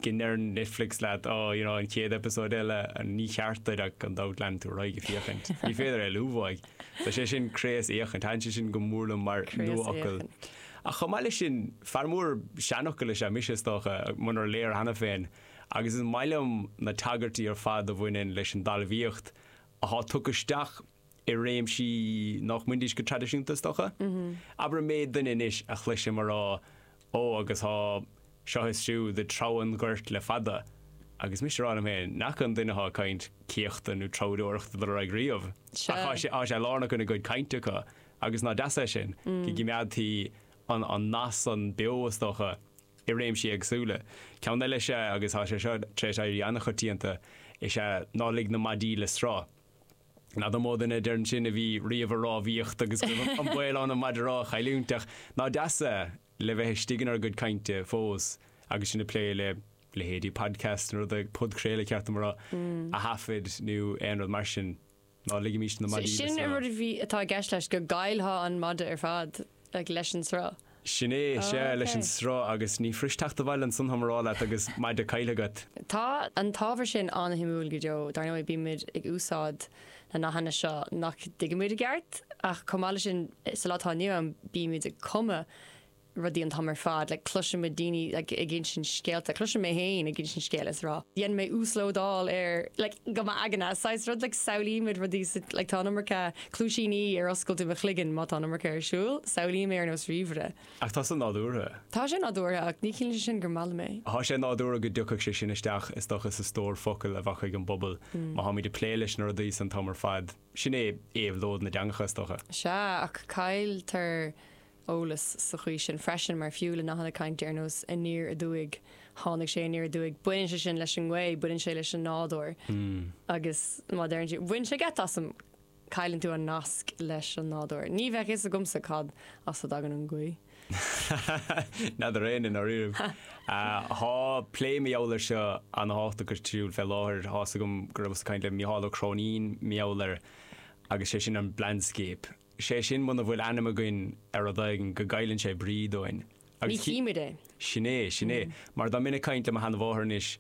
go ndeireann Netflix leat, á, you know, an chéad eipeasóid eile, ní ceart duit ach gan dabht leanfaidh tú ar aghaidh ag féachaint. Ní féidir é a leigheas. Tá sé sin craosfhéachaint. Thaitin sé sin go mór liom mar nuafhocal. Ach chomh maith leis sin, fear mór seanfhocal is ea mise, is dócha, munar léir cheana féin, agus is maith liom na tagairtí ar fad a bhaineann leis an dtalmhaíocht atá tugtha isteach i réimsí nach mbainidís leis go traidisiúnta, is dócha. Abair an méid daoine anois a chloisim a rá, Ó, agus tá seo is siúd ag treabhadh an ghoirt le fada, agus mise ag rá liom féin, ní raibh an duine atá ag caint i mbun céachta nó treabhadóireachta riamh, ach tá sé, tá sé lárnach ina gcuid cainte acu, agus nach deas é sin, go gcimeádtaí an, an nath san beo, is dócha, i réimsí éagsúla. Ceann eile is ea, agus tá sé seo tar éis éirí an-choitianta, is ea, ná lig na maidí le sruth. Ní dóigh liom gur mó duine a deireann sin a bhí riamh ag rámhaíocht agus go raibh an baol ann an maide rámha a chailliúint ach nach deas é a bheith istigh inár gcuid cainte fós agus sinn ag plé le leithéidí podcasts nó rudaí podchraoladh ceart againn a thaifead nó aon rud mar sin. Ná ligimís na maidí. Sin rud a bhí atá i gceist leis go gcailltheá an maide ar fad ag leis an sruth. Sin é, sea, leis an sruth, agus ní fuirist teacht abhaile ansan, táim á rá leat, agus maide caillte agat. Tá an t-ábhar sin an-shuimiúil go deo. Dar ndóigh, bímid ag úsáid nathanna seo nach dtuigimid i gceart, ach chomh maith leis sin, sa lá atá inniu ann, bímid ag cumadh rudaí an t-am ar fad. Like, cloisimid daoine like ag insint scéalta, cloisim mé féin ag insint scéil is ag rá, dhein mé uaslódáil ar, like go dtí m'aigne, saghas rud, like samhlaímid rudaí sa, like tá an iomarca, Cluaisíní ar oscailt i mo chloigeann má tá an iomarca ar siúl. Samhlaím é ar nós ríomhaire. Ach tá sé nádúrtha. Tá sé nádúrtha, ach ní chiallaíonn sé sin gur maith liom é. Tá sé nádúrtha go dtiocfadh sé sin isteach, is dócha, sa stór focal a bheadh ag an bpobal má táimid ag plé leis na rudaí san an t-am ar fad. Sin é éabhlóid na dteangacha, is dócha. Sea, ach cailltear eolas sa chaoi sin freisin, mar fiú le nathanna cainte ar nós aniar aduaidh, tháinig sé aniar aduaidh, baineann sé sin leis an ngaoth, baineann sé leis an nádúr. Agus má deireann tú, bhain sé geit asam! Cailleann tú an nasc leis an nádúr. Ní bheadh fhios agamsa cad as a dtagann an ghaoth. N'fheadar éinne i ndáiríribh. Tá plé mar gheall air seo ana thábhachtach ar siúl fé láthair. Thá's agam go rabhas ag caint le Mícheál Ó Cróinín mar gheall air agus sé sin an blandscape. Sé sin muna bhfuil ainm againn ar rud éigin go gcailleann sé brí dúinn. Ní chímid é. Sin é, sin é. Mar dá mbeinn ag caint le mo sheana mháthair anois,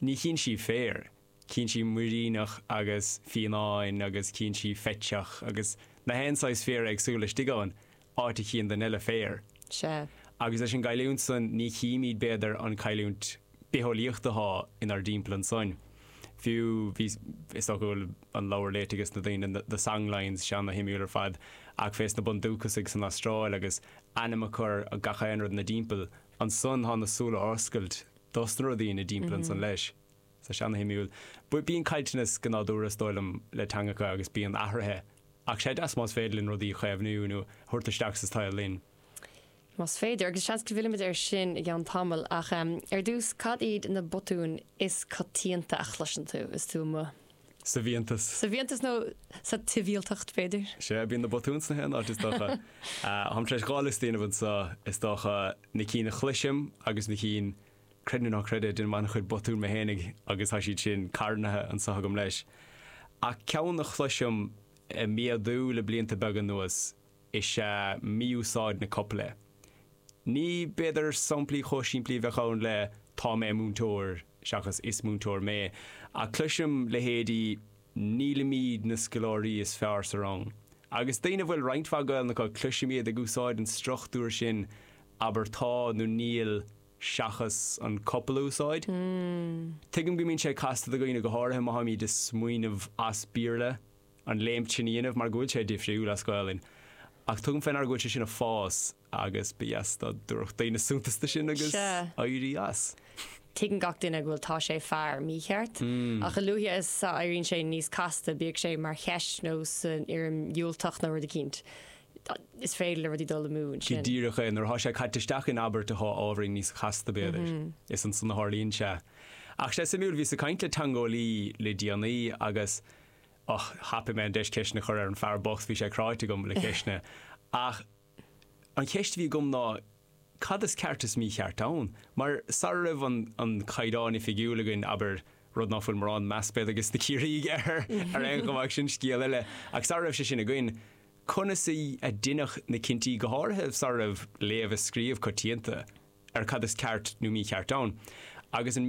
ní chíonn sí féar. cíonn siad muiríneach agus fionnán agus cíonn siad faiteach agus na haon saghas féar éagsúil istigh ann, áit a chíonn duine eile féar. Sea, agus leis an gcailliúint san, ní chímíd, b'fhéidir, an cailliúint bitheolaíochta atá inár dtimpeall ansoin. Fiú, bhí, is dócha go bhfuil an leabhar léite ages na daoine, na, The Songlines, sé ana shuimiúil ar fad, ach fés na bundúcasaigh san Astráil agus ainm a chur ar gach aon rud ina dtimpeall ansoin, thá na súile oscailte dos na rudaí ina dtimpeall ansan leis. Sé ana shuimiúil. Bíonn caillteanas go nádúrtha, is dóigh liom, le teangacha agus bíonn athruithe, ach sé deas más féidir linn rudaí a chaomhnú nó a thabhairt isteach sa tsaol linn. Más féidir, agus seans go bhfillfimid air sin i gceann tamaill, ach ar dtús, cad iad na botúin is coitianta a chloiseann tú is tú amuigh? Sa bhfiántas. Sa bhfiántas nó sa tsibhialtacht, b'fhéidir? Sea, bíonn na botúin sna haon áit, is dócha. Táim tar éis dhá liosta a dhéanamh anseo, is dócha, na cinn a chloisim agus na cinn Creid nó ná creid, deinim an-chuid botún mé fhéinig agus tá siad sin carnaithe anseo agam leis. Ach ceann a chloisim a' méadú le blianta beaga anuas is ea mí-úsáid na copaile. Ní b'fhéidir samplaí chomh simplí a bheadh ann le Tá mé múinteoir seachas Is múinteoir mé, ach cloisim leithéidí Nílimid na scoláirí is fearr sa rang. Agus daoine a bhfuil roinnt mhaith Gaelainn acu, cloisim iad ag úsáid an struchtúir sin Abair Tá nó Níl seachas an copail a úsáid. Tuigim go mbíonn sé casta do dhaoine, go háirithe má tháimid a' smaoineamh as Béarla an léim sin a dhéanamh mar go bhfuil sé difriúil as Gaolainn. Ach tugaim fé ndear go bhfuil sé sin a' fás agus ba dheas dá dtabharfadh daoine suntas do sin agus éirí as. Tuigeann gach duine go bhfuil tá sé fear mícheart, ach a luaithe is a éiríonn sé níos casta, bíodh sé mar cheist nó san fhoirm dhiúltach nó rud eicínt, is féidir le rudaí dul amú ansin. Go díreach é, nuair atá sé caite isteach in abairt atá ábhairín níos casta, b'fhéidir, is ansan a tharlaíonn sé. Ach sé suimiúil, bhíos ag caint le teangeolaí le déanaí agus, och, thapaigh mé an deis ceisteanna a chur air, an fear bocht, bhí sé cráite agam le ceisteanna. Ach an cheist a bhí agam ná cad is ceart is mícheart ann? Mar sara raibh an Caighdeán Oifigiúil againn, abair, rud ná fuil mórán meas, b'fhéidir, ag na Ciarraígh air ar aon chuma ach sin scéal eile, ach sara raibh sé sin againn, conas a deineadh na cinntí, go háirithe sara raibh léamh is scríobh coitianta ar cad is ceart nó mícheart ann, agus an.